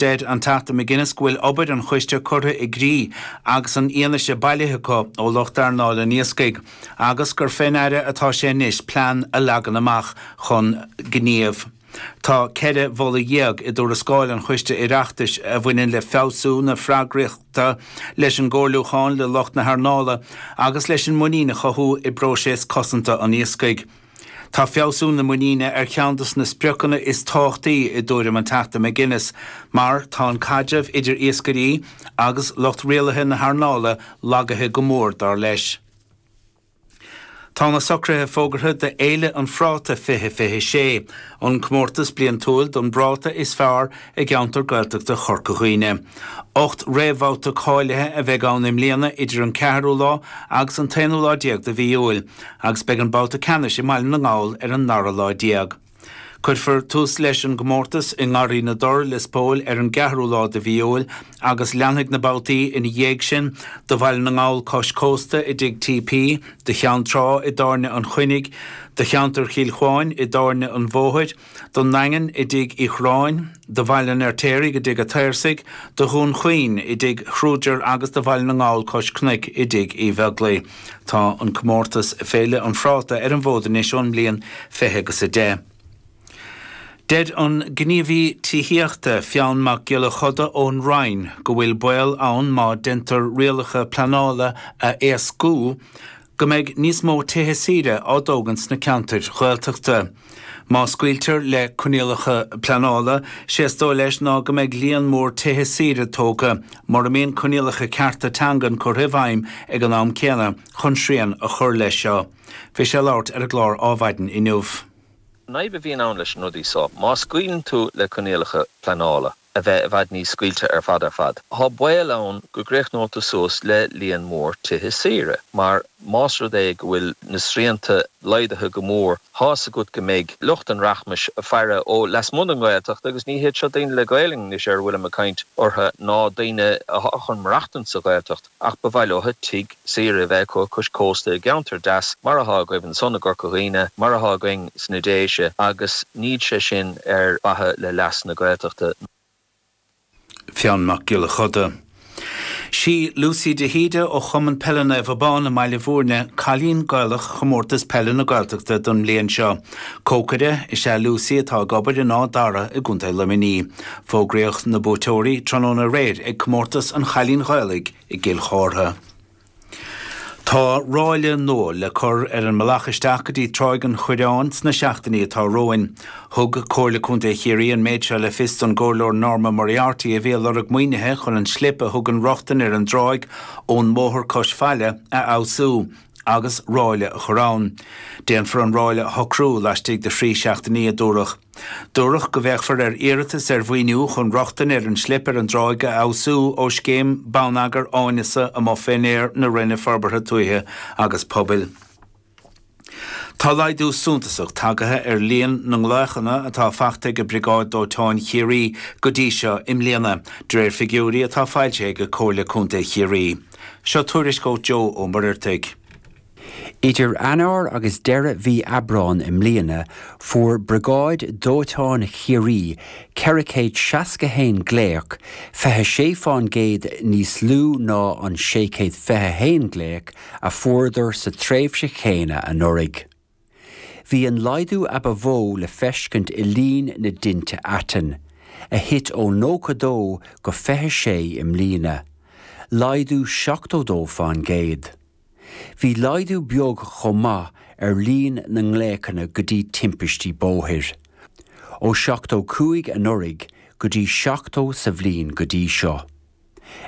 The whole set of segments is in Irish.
Deir an Teachta McGuinness go bhfuil obair an choiste curtha i gcrích agus an fhianaise bailithe acu ó lucht earnáil an iascaigh agus gur fén Aire atá sé anois plean a leagan amach chun gnímh. Tá ceithre mholadh dhéag i dtuarascáil an choiste Oireachtais a bhaineann le feabhsú na freagrachta, leis an gcomhairliúchán le lucht na hearnála agus leis an muinín a chothú i bpróiseas cosanta an iascaigh. Tá feabhsú na muiníne ar cheann de na spriocanna is tábhachtaí i dtuairim an Teachta McGuinness mar tá an caidreamh idir iascairí agus lucht rialaithe na hearnála lagaithe go mór, dar leis. Tá na socruithe fógartha do Fhéile an Phráta 2026, an comórtas bliantúil don bpráta is fearr, i gceantar Gaeltachta Chorca Dhuibhne. Ocht réamhbhabhta cáilithe a bheidh ann i mbliana idir an ceathrú lá agus an t-aonú lá déag de mhí Iúil agus beidh an babhta ceannais i mBaile na nGall ar an dara lá déag. Cuirfear tús leis an gcomórtas i nGarraí na dTor, Lios Póil ar an gceathrú lá de mhí Iúil agus leanfaidh na babhtaí ina dhiaidh sin do Bhaile na nGall cois cósta i dTigh TP, do Cheann Trá i dTábhairne an Chuinnigh, do cheantar Chill Chuáin i dTábhairne an Bhóthair, don nDaingean i dTigh Uí Churráin, do Bhaile an Fheirtéaraigh i dTigh a' tSaorsaigh, do Dhún Chaoin i dTigh Khrúger agus do Bhaile na nGall cois cnoic i dTigh Uí Bheaglaoi. Tá an comórtas 'Féile an Phráta' ar an bhfód anois ón mbliain fiche agus a deich. Deir an gníomhaí tithíochta, Fionn Mac Giolla Chuda ón Roinn go bhfuil baol ann má deintear rialacha pleanála a éascú, go mbeidh níos mó tithe saoire á dtógaint sna ceantair Ghaeltachta. Má scaoiltear le coinníollacha pleanála, sé is dóigh leis ná go mbeidh líon mór tithe saoire tógtha, mura mbíonn coinníollacha cearta teangan curtha i bhfeidhm ag an am céanna chun srian a chur leis seo. Bhí sé ag labhairt ar an gclár Adhmhaidin inniu. Nuance a bhíonn ann leis na rudaí so. Má scaoileann tú le coinníollacha pleanála. a bheith i bhfad níos scaoilte ar fad ar fad. Tá baol ann go gcríochnófá suas le líon mór tithe saoire mar más rud é go bhfuil na srianta laghdaithe go mór, tá's agat go mbeidh lucht an rachmais ag faire ó lasmuigh den Ghaeltacht agus ní hiad seo daoine le Gaelainn anois ar a bhfuilim ag caint orthu ná daoine atá chun maireachtaint sa Ghaeltacht. ach ba mhaith leo tigh saoire a bheith acu cois cósta i gceantar deas mar atá agaibh ansan i gCorca Dhuibhne, mar atá againn sna Déise, agus níl sé sin ar mhaithe le leas na Gaeltachta. Fionn Mac Giolla Chuda. Sí Lucy de hÍde ó Chumann Peile Naomh Abán i mBaile Bhúirne cailín Gaelach Chomórtas Peile na Gaeltachta don mbliain seo. Cócaire is ea Lucy atá ag obair in Áth Dara i gContae Luimnigh. Fógraíodh na buaiteoirí tráthnóna aréir ag Comórtas an Chailín Ghaelaigh i gCill Chártha. Tá ráille nua le cur ar an mbealach isteach go dtí Tráigh an Chuireáin sna seachtainí atá romhainn. Thug Comhairle Contae Chiarraí an méid seo le fios don gComhairleoir Norma Moriarty a bhí ag lorg maoinithe chun an slip a thugann rochtain ar an dtráigh ón mbóthar cois faille a fheabhsú. agus ráille a chur ann. Déanfar an ráille a shocrú laistigh de thrí seachtainí, a dúradh. Dúradh go bhféachfar ar iarratais ar mhaoiniú chun rochtain ar an slip ar an dtráigh a fheabhsú ó scéim Bonneagair Áineasa amuigh fén aer na Roinne Forbartha Tuaithe agus Pobail. Tá laghdú suntasach tagaithe ar líon na nglaochanna atá fachta ag Briogáid Dóiteáin Chiarraí go dtí seo i mbliana, de réir figiúirí atá foilsithe ag Comhairle Contae Chiarraí. Seo tuairisc ó Joe Ó Muircheartaigh. Idir Eanáir agus deireadh mhí Aibreán i mbliana, fuair Briogáid Dóiteáin Chiarraí 461 glaoch, 26 fán gcéad níos lú ná an 621 glaoch a fuaireadar sa tréimhse chéanna anuraidh. Bhí an laghdú ba mhó le feiscint i líon na dtinte aitinn, a thit ó 92 go 26 i mbliana, laghdú 72 fán gcéad. Bhí laghdú beag chomh maith ar líon na nglaochanna go dtí timpistí bóthair, ó 75 anuraidh go dtí 70 sa bhliain go dtí seo.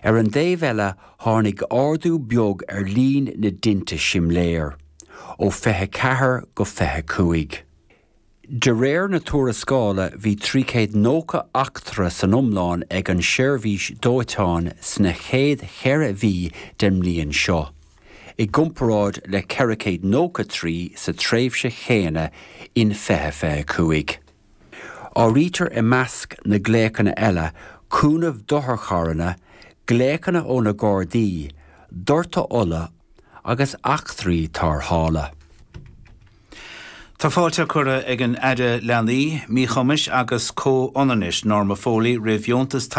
Ar an dtaobh eile, tháinig ardú beag ar líon na dtinte simléir, ó 24 go 25. De réir na tuarascála, bhí 390 eachtra san iomlán ag an seirbhís dóiteáin sna chéad cheithre mhí den mbliain seo, i gcomparáid le 493 sa tréimhse chéanna in 2025. Áirítear i measc na glaochanna eile cúnamh d'otharcharranna, glaochanna ó na Gardaí, doirteadh ola agus eachtraí tárrthála. Tá fáilte curtha ag an Aire Leanaí, Míchumais agus Comhionannais, Norma Foley, roimh dheontas tacaíochta,